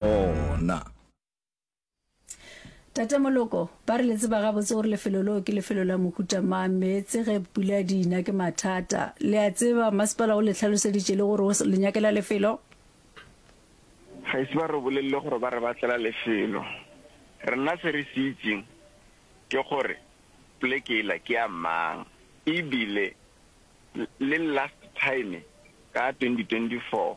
gona. Tate Moloko, ba re le tseba gabotse gore lefelo leo ke lefelo la mohuta mang, meetse ge pula di ina ke mathata. Le a tseba, masepala o le hlaloseditše le gore o le nyakela lefelo? Ga ise ba re bolelele gore ba re batlela lefelo. Rena se re se itseng ke gore pleke yela ke ya mang ebile le last time ka 2024,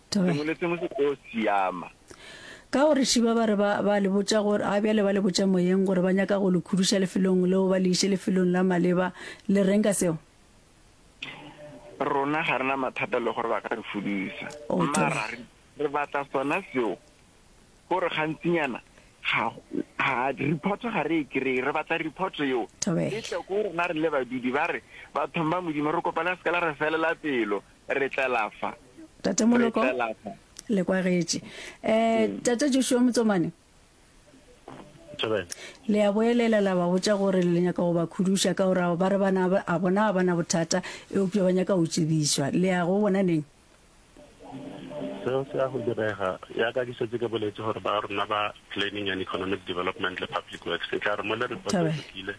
Sengwe le sengwe se tlo siama. Ka gore šiba ba re ba, ba le botša gore, ga bjale ba le botša moyeng gore ba nyaka go le khuduša lefelong leo ba le iše lefelong la maleba, le reng ka seo? Rona ga re na mathata le gore ba ka re fudusa, Oh, mara thaba. re- re batla sona seo gore gantsinyana ga ga report ga re e kry-e re batla report eo Thobela. e tle ko rona re le badudi ba re bathong ba modimo re kopa le seka la re felela pelo Re tlela fa. Tate Moloko, le kwagetše. Um Tate Joshua Motsomane, le a boelela la ba botša gore le nyaka go ba khuduša ka gore ba re bana a bona ga bana bothata eupša ba nyaka go tsebišwa. Le ya go bona neng? Seo se ya go direga, ya ka ke šetše ke boletše gore ba rona ba Planning and Economic Development le Public Works e tla re mo le report e lokile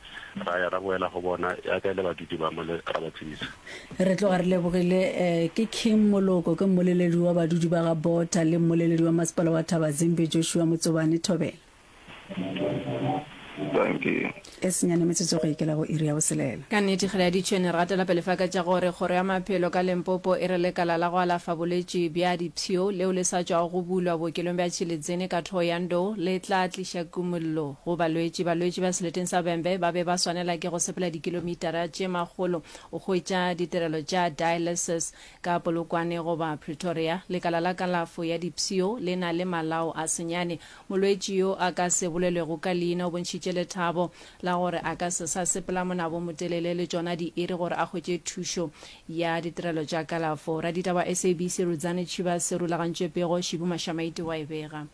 Ra ya ra boela go bona, ya ka e le badudi ba mole, ra ba tsebisa. Re tloga re lebogile. Ke King Moloko, ke mmoleledi wa badudi ba ga Botha le mmoleledi wa masepala wa Thabazimbi, Joshua Motsobane. Thobela. Dankie. E senyane metsotso go ikela go iri ya boselela. Ka nnete ge le aditšwe ne re gatela pele fa ka tša gore kgoro ya maphelo ka Lempopo e re lekala la go alafa bolwetši bja dipshio leo le sa tšwago go bulwa bookelong bja Tšhilidzini ka Thohoyandou le tla tliša kumollo. Go balwetši, balwetši ba seleteng sa Bembe ba be ba swanela ke go sepela dikilomitara tše makgolo go hwetša ditirelo tša dialysis. Ka Polokwane goba Pretoria, lekala la kalafo ya dipsio le na le malao a senyane. Molwetši yo a ka se bolelwego ka leina o bontšhitše lethabo la gore a ka se sa sepela monaba o motelele le tšona diiri gore a hwetše thušo ya ditirelo tša kalafo. Raditaba wa SABC Rudzani Chiba se rulagantšwe pego Shibu Mashamaite wa e bega.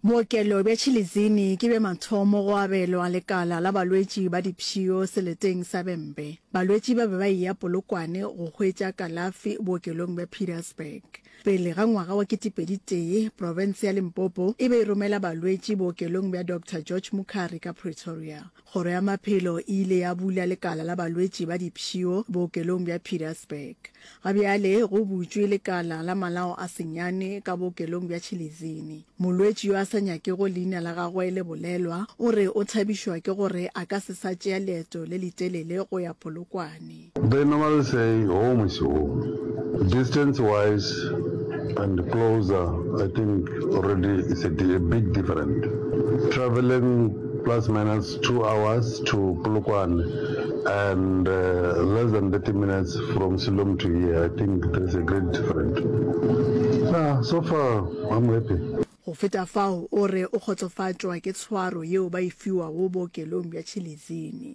Bookelo bja Chilizini ke bja mathomo go abelwa lekala la balwetši ba dipshio seleteng sa Bembe. Balwetši ba be ba eya Polokwane go hwetša kalafi bookelong bja Pietersburg. Pele ga ngwaga wa ketepedi tee, profense ya Limpopo e be e romela balwetši bookelong bja Doctor George Mukhari ka Pretoria. Kgoro ya Maphelo e ile ya bula lekala la balwetši ba dipshio bookelong bja Pietersburg. Ga bjale go butšwe lekala la malao a senyane ka bookelong bja Chilizini. Molwetši yo a sa nyakego leina la gagwe le bolelwa o re o thabišwa ke gore a ka se sa tšea leeto le letelele go ya Polokwane. They normally say home is home, distance wise and closer I think already is a big different, travelling plus minus two hours to Polokwane and less than 30 minutes from Siloam to here I think there is a great different, nah so far I'm happy. Go feta fao o re o kgotsofatšwa ke tshwaro yeo ba e fiwago bookelong bja Chilizini.